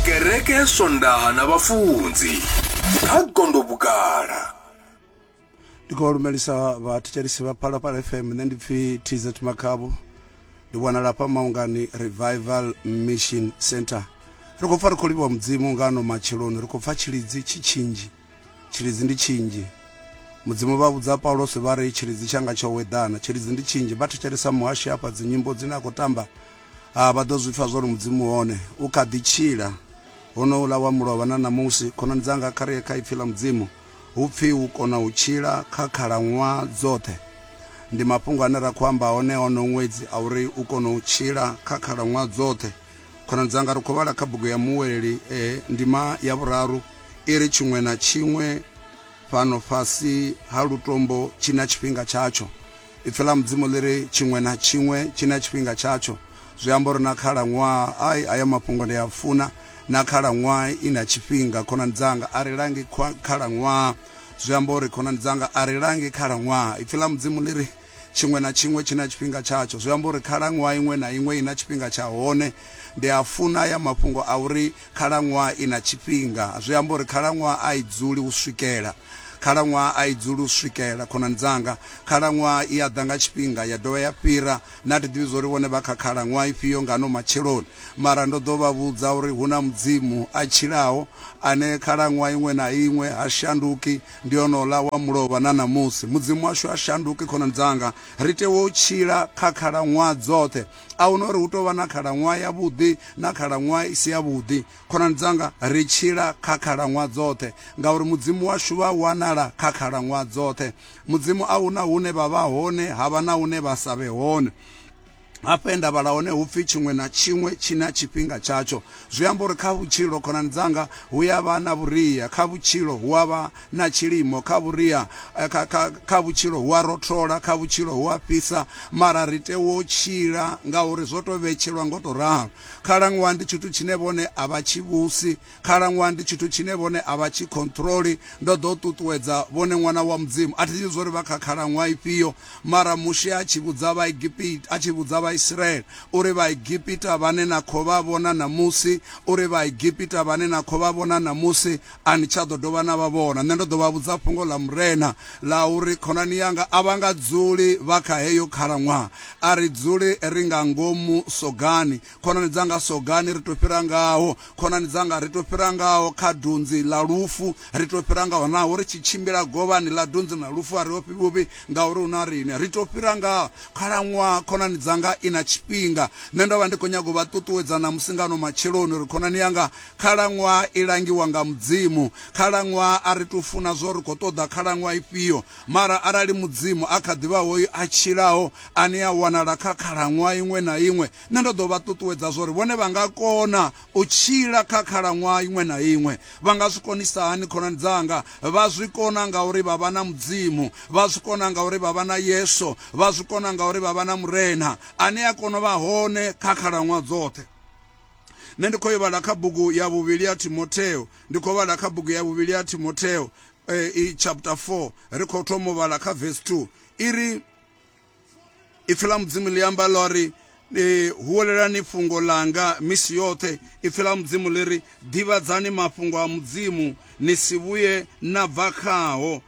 kereke ya swondaha na vhafunzi kha gondo vhugala ndi khou lumelisa vhathetshelisi vha phalaphala fm nṋe ndi pfi tz makhavho ndi wanala hafha maungani revival mission center ri khou pfa ri khou livhiwa mudzimu nga ano matsheloni ri khou pfa tshilidzi tshi tshinzhi Tshilidzi ndi tshinzhi. Mudzimu vha vhudza Paulose vha ri tshilidzi tshanga tsho weḓana. Tshilidzi ndi tshinzhi. Vha thetshelesa muhashi hafha dzinyimbo dzine a khou tamba. Ah, vha ḓo zwi pfa zwa uri Mudzimu hone. U kha ḓi tshila. Honouḽa wa mulovha na ṋamusi. Khonani dzanga, kha ri ye kha Ipfi ḽa Mudzimu. Hu pfi u kona u tshila kha khalaṅwaha dzoṱhe. Ndi mafhungo ane ra khou amba one onowu ṅwedzi a uri u kona u tshila kha khalaṅwaha dzoṱhe. Khonani dzanga, ri khou vhala kha bugu ya Muweleli e, ndima ya vhuraru, i ri, Tshiṅwe na tshiṅwe fhano fhasi ha lutombo tshi na tshifhinga tshatsho. Ipfi ḽa Mudzimu ḽi ri, Tshiṅwe na tshiṅwe tshi na tshifhinga tshatsho. Zwi amba uri na khalaṅwaha, ai, hayo mafhungo ndi a funa. Na khalaṅwaha i na tshifhinga, khonani dzanga. A ri langi khalaṅwaha. Zwi amba uri, khonani dzanga, a ri langi khalaṅwaha. Ipfi ḽa Mudzimu ḽi ri, Tshiṅwe na tshiṅwe tshi na tshifhinga tshatsho. Zwi amba uri khalaṅwaha iṅwe na iṅwe i na tshifhinga tsha hone. Ndi a funa haya mafhungo a uri khalaṅwaha i na tshifhinga. Zwi amba uri khalaṅwaha a i dzuli u swikela. Khalaṅwaha a i dzuli u swikela, khonani dzanga. Khalaṅwaha i a ḓa nga tshifhinga ya dovha ya fhira. Na thi ḓivhi zwa uri vhone vha kha khalaṅwaha ifhio nga ano matsheloni, mara ndo ḓo vha vhudza uri hu na Mudzimu a tshilaho, ane khalaṅwaha iṅwe na iṅwe ha shanduki. Ndi onola wa mulovha na ṋamusi. Mudzimu washu ha shanduki khonani dzanga. Ri tea u tshila kha khalaṅwaha dzoṱhe. A hu na uri hu tou vha na khalaṅwaha yavhuḓi na khalaṅwaha i si yavhuḓi. Khonani dzanga, ri tshila kha khalaṅwaha dzoṱhe ngauri Mudzimu washu vha wanala kha khalaṅwaha dzoṱhe. Mudzimu a hu na hune vha vha hone ha vha na hune vha sa vhe hone. Hafha he nda vhala hone hu pfi tshiṅwe na tshiṅwe tshi na tshifhinga tshatsho. Zwi amba uri kha vhutshilo, khonani dzanga, hu ya vha na vhuria. Kha vhutshilo, hu a vha na tshilimo. Kha vhuria, kha, kha, kha vhutshilo hu a rothola. Kha vhutshilo hu a fhisa. Mara ri tea u tshila ngauri zwo tou vhetshelwa ngo tou ralo. Khalaṅwaha ndi tshithu tshine vhone a vha tshi vhusi. Khalaṅwaha ndi tshithu tshine vhone a vha tshi khonṱhuroli. Ndo ḓo ṱuṱuwedza vhone Ṅwana wa Mudzimu. A thi ḓivhi zwa uri vha kha khalaṅwaha ifhio, mara Mushe a tshi vhudza Vhaegipita, a tshi vhudza Vhaisiraele uri, Vhaegipita vhane na khou vha vhona ṋamusi, uri Vhaegipita vhane na khou vha vhona ṋamusi, a ni tsha ḓo dovha na vha vhona. Nṋe ndo ḓo vha vhudza fhungo ḽa Murena ḽa uri, Khonani yanga a vha nga dzuli vha kha heyo khalaṅwaha. A ri dzuli ri nga ngomu sogani, khonani dzanga sogani ri to fhira ngaho khonani dzanga ri to fhira ngaho kha dunzi ḽa lufu ri to fhira ngaho naho ri tshi tshimbila govhani ḽa dunzi na lufu a ri ofhi vhuvhi ngauri hu na riṋe ri to fhira ngaho khalaṅwaha khonani dzanga i na tshifhinga nṋe ndo vha ndi khou nyaga u vha ṱuṱuwedza na musingano matsheloni uri khonani yanga khalaṅwaha i langiwa nga mudzimu khalaṅwaha a ri to funa zwo ri khou ṱoḓa khalaṅwaha ifhio mara arali mudzimu a kha ḓivha hoyu a tshilaho ane a wanala kha khalaṅwaha iṅwe na iṅwe Nṋe ndo ḓo vha ṱuṱuwedza zwa uri vhone vha nga kona u tshila kha khalaṅwaha iṅwe na iṅwe. Vha nga zwi konisa hani? Khonani dzanga vha zwi kona ngauri vha vha na Mudzimu. Vha zwi kona ngauri vha vha na Yesu. Vha zwi kona ngauri vha vha na Murena ane a kona u vha hone kha khalaṅwaha dzoṱhe. Nṋe ndi khou yo vhala kha bugu ya vhuvhili ya Timotheo. Ndi khou vhala kha bugu ya vhuvhili ya Timotheo eh, i chapter 4 ri khou thoma u vhala kha verse 2 i ri ipfi ḽa mudzimu ḽi amba ḽo ri ni huwelelani fhungo langa misi yoṱhe ipfi ḽa mudzimu ḽi ri ḓivhadzani mafhungo a mudzimu ni si vhuye na bva khaho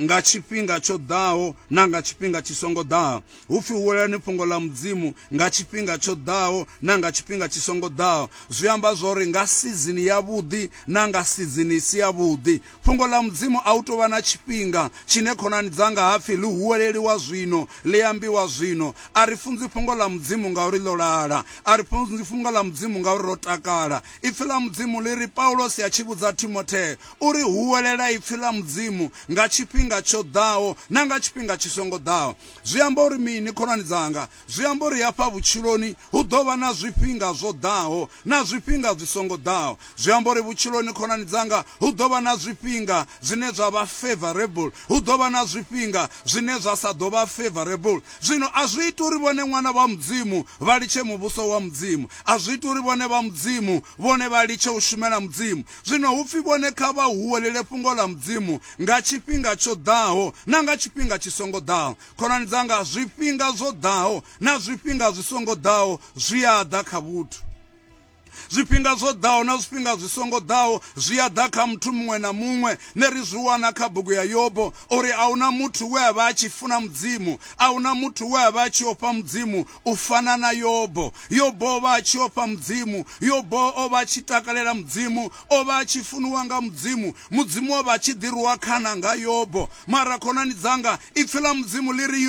nga tshifhinga tsho ḓaho na nga tshifhinga tshi songo ḓaho hu pfi huwelelani fhungo ḽa mudzimu nga tshifhinga tsho ḓaho na nga tshifhinga tshi songo ḓaho zwi amba zwori nga sizini yavhuḓi na nga sizini i si yavhuḓi Fhungo ḽa Mudzimu a hu tou vha na tshifhinga tshine khonani dzanga ha pfi ḽi huweleliwa zwino, ḽi ambiwa zwino. A ri funzi Fhungo ḽa Mudzimu ngauri ḽo lala. A ri funzi Fhungo ḽa Mudzimu ngauri ro takala. Ipfi ḽa Mudzimu ḽi ri, Paulosi a tshi vhudza Timothee u ri, Huwelela ipfi ḽa Mudzimu nga tshifhinga tsho ḓaho na nga tshifhinga tshi songo ḓaho. Zwi amba uri mini, khonani dzanga? Zwi amba uri hafha vhutshiloni hu ḓo vha na zwifhinga zwo ḓaho na zwifhinga zwi songo ḓaho. Zwi amba uri vhutshiloni khonani dzanga hu ḓo vha na zwifhinga zwine zwa vha favourable, hu ḓo vha na zwifhinga zwine zwa sa ḓo vha favourable. Zwino a zwi iti uri vhone ṅwana vha Mudzimu vha litshe Muvhuso wa Mudzimu. A zwi iti uri vhone vha Mudzimu vhone vha litshe u shumela Mudzimu. Zwino hu pfi vhone kha vha huwelele fhungo ḽa Mudzimu nga tshifhinga tsho ḓaho na nga tshifhinga tshi songo ḓaho. Khonani dzanga, zwifhinga zwo ḓaho na zwifhinga zwi songo ḓaho zwi a ḓa kha vhuthu. zwifhinga zwo ḓaho na zwifhinga zwi songo ḓaho zwi a ḓa kha muthu muṅwe na muṅwe ne ri zwi wana kha bugu ya yobo uri a huna muthu we a vha a tshi funa mudzimu a huna muthu we a vha a tshi ofha mudzimu u fana na yobo yobo o vha a tshi ofha mudzimu yobo o vha a tshi takalela mudzimu o vha a tshi funiwa nga Mudzimu. Mudzimu o vha a tshi ḓirwa khana nga Yobo. Mara khonani dzanga, Ipfi ḽa Mudzimu ḽi ri,